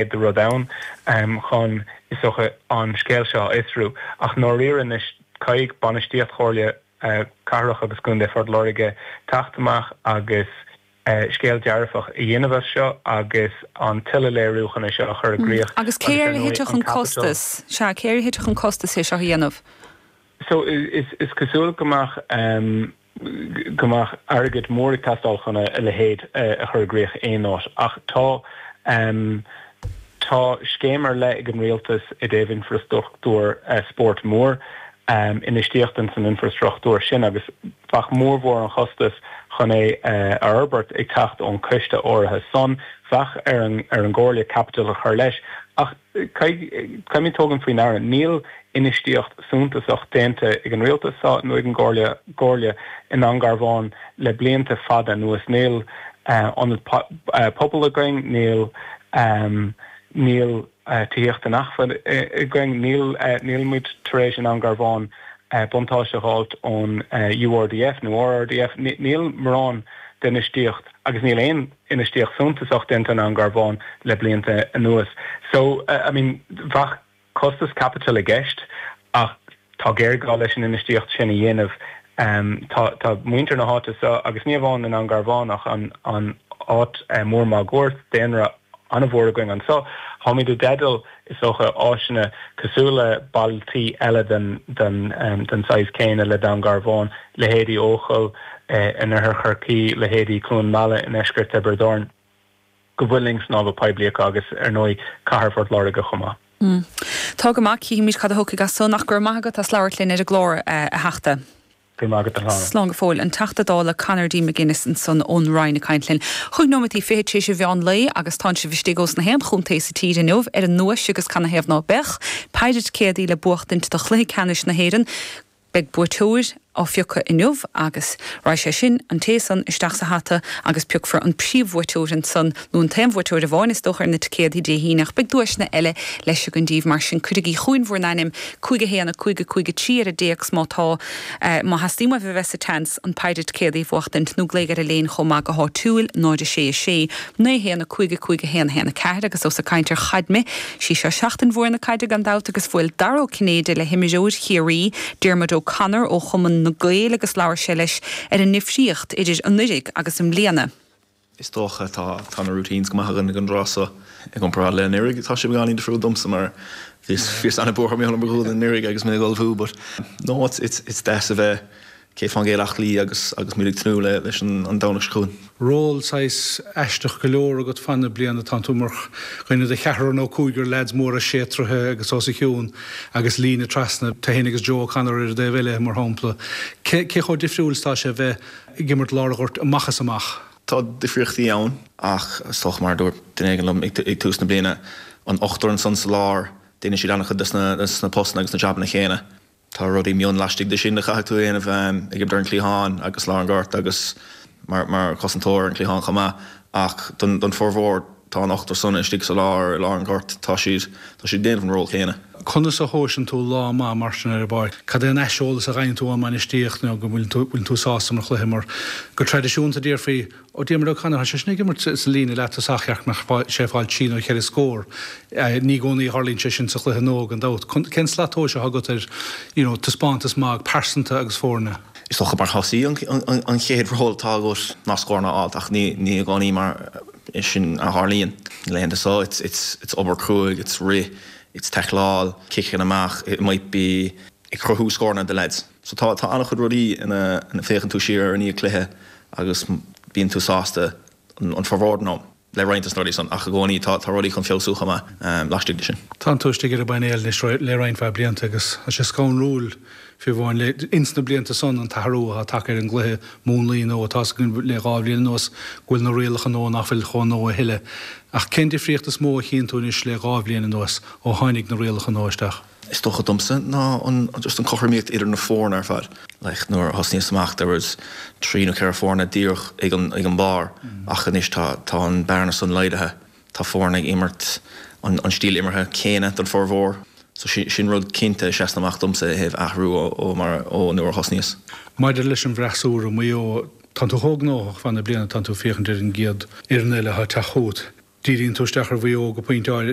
chéad rud ann chun, is dócha, an scéal seo a fhiosrú. Ach ndáiríre anois, caithfidh bainistíocht Chomhairle Cathrach agus Contae Phort Láirge teacht amach agus scéal dearfach a dhéanamh as seo agus an t-uileléiriúchan seo a chur i gcríoch Agus cé agus ar ndóigh cé air a thitfeadh an an costas? Sea, cé air a thitfeadh an costas é seo a dhéanamh? So, is cosúil go mbeadh. go mbeadh airgead mór ag teastáil chun a leithéid a chur i gcrích in aon áit. Ach tá tá scéim ar leith ag an Rialtas i dtaobh infrastruchtúr spóirt mór, infheistíocht in san infrastruchtúr sin agus bheadh mórmhór an chostais chun é a fhorbairt ag teacht ón gciste áirithe san. Bheadh ar an gComhairle caipitil a chur leis. Ach. Caithfimíd tógaint faoi ndeara, níl infheistíocht suntasach déanta ag an Rialtas so ná ag an gComhairle i nDún Garbhán le blianta fada anuas. Níl Ionad Pobail againn, níl tithíocht inacmhainne againn, nílimíd tar éis i nDún Garbhán buntáiste a dh'fháilt ón URDF nó RRDF, níl mórán d'infheistíocht agus níl aon. infheistíocht suntasach déanta i nDún Garbhán le blianta anuas so I mean bheadh costas caipitil i gceist ach tá géarghá leis an infheistíocht sin a dhéanamh. Tá tá muintir na háite so agus ní amháin i nDún Garbhán ach an an áit mór máguaird daonra an-mhór againn anso, táimid i dteideal, Is dócha áiseanna cosúil le bailtí eile den saghas céanna le Dún Garbhán, leithéidí Eochaill in oirthear Chorcaí, leithéidí Cluain Meala i ndeisceart Thiobraid Árann, go bhfuil linn snámha poiblí acu agus ar ndóigh cathair Phort Láirge chomh maith. Tá go maith, cífimid cad a thiocfaidh as san. Ach go raibh maith agat as ucht labhairt linn ar an gclár, a Theachta. Go raibh maith agat a chara. Slán go fóill. An Teachta Dála Conor D. McGuinness ansan ón Rinn ag caint linn. Chúig nóimintí fichead tar éis a mheán lae agus tánn sibh istigh ós gach aon chontae sa tír inniu ar an ndóigh agus canathaobh ná beadh. Péire ticéadaí le buachtaint do chluiche ceannais na hÉireann. Beidh buaiteoir á phiocadh inniu agus raghaidh sé sin, an té san, isteach sa hata agus piocfar an príomhbhuaiteoir ansan. nó an t-aon bhuaiteoir amháin is dócha ar na ticéadaí Dé hAoine ach beidh duaiseanna eile leis, gan dabht, mar sin cuirigí chugainn bhur n-ainm, 5 1 5 5 3 ar an dtéacs má tá Má theastaíonn uaibh a bheith sa tseans an péire ticéadaí a bhuachtaint nó glaoigh ar Elaine chomh maith go háitiúil, 0 6 6 9 1 5 5 1 1 4 agus ós ag caint ar chaid mé, sí seo seachtain mhór na caide gan dabht agus bhuail Dara Ó Cinnéide le himreoir Chiarraí, Diarmuid O Connor ó Chumann na Gaeil agus labhair sé leis ar an ndifríocht idir anuiridh agus i mbliana. Is dócha tá tá na routines go maith againn ag an dtráth so i gcomparáid le anuraidh. Tá sé beagáinín difriúil domsa mar bhíos bhíos an-bhuartha mar gheall ar mo ghualainn anuraidh agus mé ag ullmhú but no it's it's it's deas a bheith sé féin gcéad ach luí agus agus muid ag tnúth le leis an an Domhnach seo chugainn. Ról saghas aisteach go leor agat fan na bliana tá tú mar dhuine de cheathrar nó cúigear leaids móra sé troithe agus os a chionn agus líne trasna, tú fhéin agus Joe O'Connor ar an dtaobh eile mar shampla. Cé cé chomh difriúil is tá sé bheith ag imirt lár an ghoirt amach is amach. Tá difríochtaí ann ach is dócha mar a dúirt duine éigin liom ag tús na bliana, an t-ochtar san sa lár, déanann siad an-chuid de sna postanna agus na jabanna chéanna. Tá rudaí mion laistigh de sin a chaithfidh tú a dhéanamh, ag imirt ar an gcliathán agus lár an ghoirt agus mar chosantóir ar an gcliathán chomh maith ach don formhór, Tá an t-ochtar san istigh sa lá ar lár an ghoirt. Tá siad. tá siad ag déanamh an ról céanna. Conas a thomhaiseann tú lá maith mar sin ar an bpáirc? Cad é an t-aiseolas a gheibheann tú ón mbainistíocht nó go bhfuil tú bhfuil tú sásta tar éis cluiche mar go traidisiúnta déarfaí Ó Diarmuid O'Connor tá sé sin ag imirt sa líne leath-thosach ceart go mbeadh sé ag fáil trí nó cheithre scór ní i gcónaí a tharlaíonn sé sin sa chluiche nó gan dabht. Cén slat tomhais atá agat ar you know taispeántas maith pearsanta agus foirne? Is dócha mar thosaí an an chéad ról atá agat ná scóranna a fháil ach ní ní i gcónaí mar Sin a tharlaíonn na laethanta so, it's obair cruaidh, it's rith, it's taicleáil, ciceanna amach, it might be ag cruthú scóranna do leaids. So tá an-chuid rudaí a fhéachann tú siar ar i ndiaidh cluiche agus bíonn tú sásta an formhór den am le roinnt de na rudaí san ach i gcónaí tá rudaí chun feabhsú chomh maith laistigh de sin. Tánn tú istigh ar an bpainéal anois le roinnt mhaith blianta agus tá sé scanrúil fiú amháin leis ins na blianta san an t-athrú atá tagtha ar an gcluiche múnlaí nó atá againn le dhá bhliain anuas go bhfuil na rialacha nó nach bhfuil chomh nó a thuilleadh. Ach cén difríocht is mó a chíonn tú anois le dhá bhliain anuas ó tháinig na rialacha nó isteach? is dócha domsa ná an just an cothramaíocht idir na foirne ar fad. like nuair a thosnaíos amach there was trí nó ceithre foirne díreach ag an ag an barr ach anois tá tá an bhearna san laghdaithe. Tá foirne ag imirt an stíl imeartha céanna don formhór so sin rud cinnte a sheasann amach domsa i thaobh athrú ó mar ó nuair a thosnaíos. Maidir leis an bhfreasúra Maigh Eo, tánn tú chomh gnóthach fan na bliana tánn tú ag féachaint ar an gcéad fhoireann eile atá ag teacht chugat. Díríonn tú isteach ar Mhaigh Eo go pointe